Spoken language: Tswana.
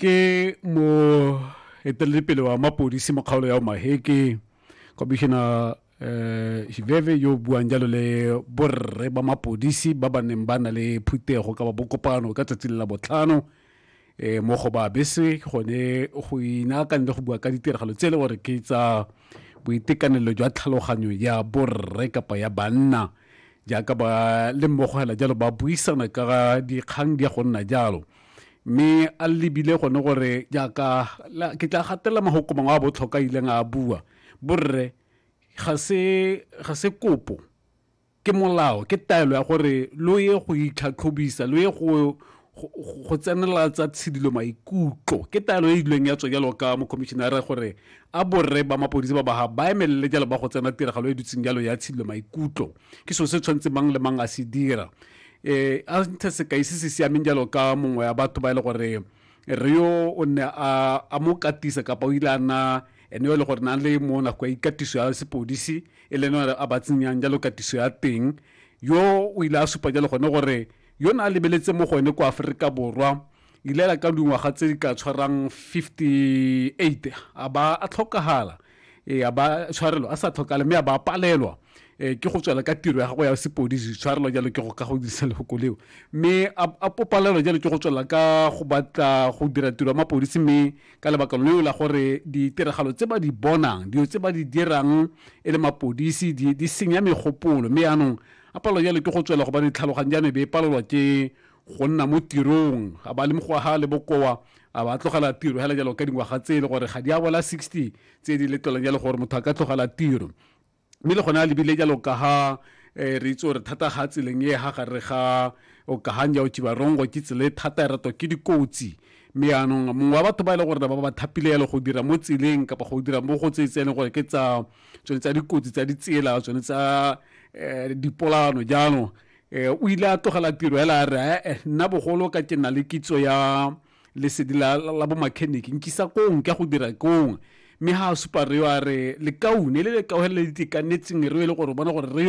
ke mo eteledipele wa mapodisi mo kgaolo ya omaheke commissioner eh Shiveve yo buang jalo le borre ba mapodisi ba ba neng ba na le phutego ka ba bokopano ka tsatsi la botlhano eh mo go ba bese gone go inaakang le go bua ka ditiragalo tse e le gore ke tsa boitekanelo jwa tlhaloganyo ya borre kapa ya banna jaaka ba le mmogo hela jalo ba buisana ka dikgang di ya go nna jalo mme a lebile gone gore jaaka ke tla gatelela mahoko mangwe a botlhokwa a ileng a bua borre ga se ga se kopo ke molao ke taelo ya gore lo ye go itlhatlhobisa lo ye go go tsenela tsa tshidilo maikutlo ke taelo e ilweng ya tswa jalo ka mokhomišenara gore a borre ba mapodisi ba baga ba emelele jalo ba go tsena tiragalo e dutseng jalo ya tshidilo maikutlo ke seo se tshwanetse mang le mang a se dira um a nthe sekai se se siameng jalo ka mongwe ya batho ba e le gore re yo o ne a mo katisa kapa o ile a na ene e le gore na le mo nako ya ikatiso ya sepodisi e leng a ba tsenyang jalo katiso ya teng yo o ile a supa jalo gone gore Yo ne a lebeletse mo go ene kwa Aforika Borwa ile la ka dingwaga tse di ka tshwarang 58 a ba a tlhokagala e a ba tshwarelo a sa tlhokale mme a ba palelwa Eh, ke go tswela ka tiro ya gago ya sepodisi tshwarelo jalo ke go ka go dirisa lefoko leo mme a popalelo jalo ke go tswela ka go batla go dira tiro ya mapodisi mme ka lebaka leo la gore ditiragalo tse ba di bonang dilo tse ba di dirang e le mapodisi di senya megopolo mme yaanong A palelwa jalo ke go tswela gobane tlhaloganyo ya me be e palelwa ke go nna mo tirong. A ba le mokgwa ha a le bokoa a ba a tlogela tiro hela jalo ka dingwaga tse e le gore ga di a bola 60 tse di letlelang jalo gore motho a ka tlogela tiro. Mme le gone a lebile jalo ka ha um re itse gore thata ga tseleng e ha gare ga okahanja o chibarongo ke tsela e thata e ratwa ke dikotsi mme yaanong mongwe wa batho ba e le gore ba ba thapile yalo go dira mo tseleng kapa go dira mo go tse tse e leng gore ke tsa tsone tsa dikotsi tsa ditsela tsone tsa um dipolano jaanong um o ile a tlogela tiro hela a re ee nna bogolo ka ke na le kitso ya lesedi la bo mechanic nkisa kong ka go dira kong mme ha a supa reo a re lekaune le lekaone le le itekanetseng reo e le gore bona gore reo